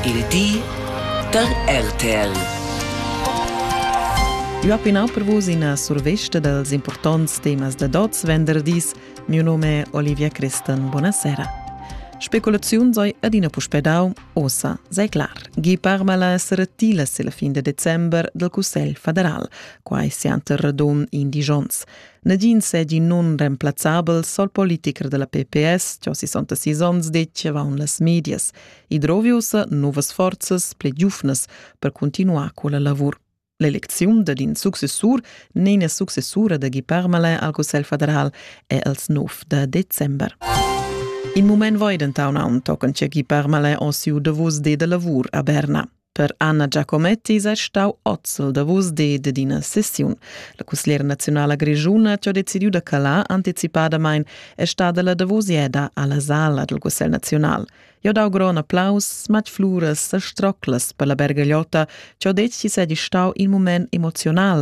Il di da RTL. Ua pinau per vus ina survesta dals importants temas da dots venderdis. Mio nome è Olivia Cristan. Buonasera. Speculaziun sei adina puspè dau, ossa sei clar. Gi parma la srtila se la fin de december del Cussel federal, quai sianter radun in digions. Negin segi nunreemplazzabel sol politicher della PPS, che ho 66 onns deceva en las medias, e droviusa novas forzas ple giufnas per continuar quella lavur. L'elecziun dad in successur nenia successura da Guy Parmelin al Cussel federal è als 9 de december. In moment voi dentaun aun tocan che Guy Parmelin o siu davos de da lavur a Berna. Per Anna Giacometti sei stau ozzel davos di dad ina sessiun. La cusgliera naziunala grischuna ha decidiu da calar anticipadamain e stada la davosieda alla sala dal Cussegl naziunal. Jo dau gron applaus, smat fluras e stroclas per la bergagliotta, che ho detg chi seigi stau in moment emoziunal,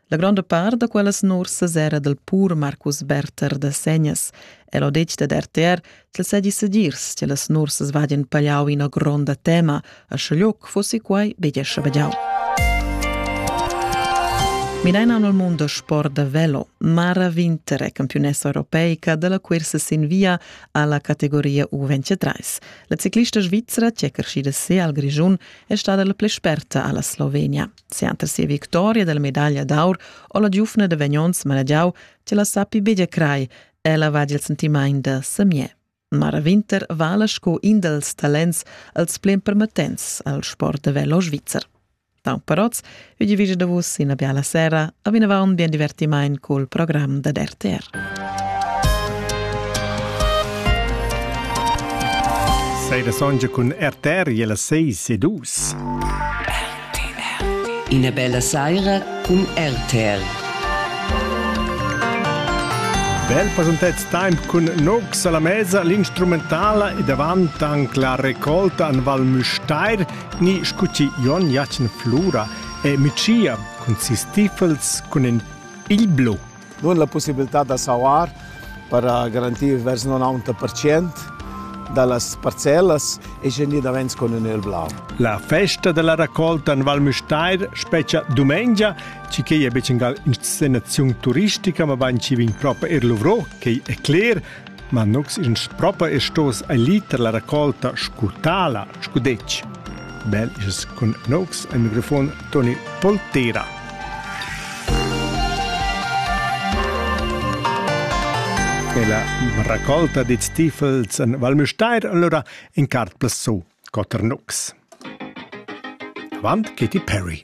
La gronda part da quellas nursas era dal pur Marcus Berther da Segnas. El ho detg dad RTR ch'el sedi sedirs che las nursas vadien pagliau ina gronda tema, a schaglioc fossi quai be gescha vegiau. Mineina nel mondo sport da velo, Mara Winter è campionessa europeica della cursa sin via alla categoria U23. La ciclista svizzera, che è crescida se al Grigiun, è stata la plei sperta alla Slovenia. Sianta sia victoria della medaglia d'aur o la giufna de Vagnons Maragiau ce la sappi begia crai, ella va il sentimaint da Samier. Mara Winter vala sco in dels talents als plen permettents al sport de velo svizzer. Pau Paroz, vi divide da vus in biala sera, a vinavant bien divertimain col program da RTR. sei da songe cun RTR e las 6 e 2. Ina bella saira cun RTR. Bel pasuntet temp cun Nox alla mesa l'instrumentala e davant anche la raccolta an Val Müstair ni scuti Jon Jacen Flura e Micia cun si Stiefels cun in il blu. nun la pussibilità da sauar per garantir vers 90% da las parcellas e gnir davent con ün el blau. La festa della raccolta in Val Müstair specia dumengia, ci che è bec in inscenazione turistica, ma bain ci vin proprio er luvrò, che è cler, Ma nus in propa e stos a liter la raccolta scu tala, scu detg. Bel is cun nox al microfon Toni Poltera. E la raccolta di stifels en Val Müstair allora in cart plasso, Cotter Nox. Avant Katy Perry.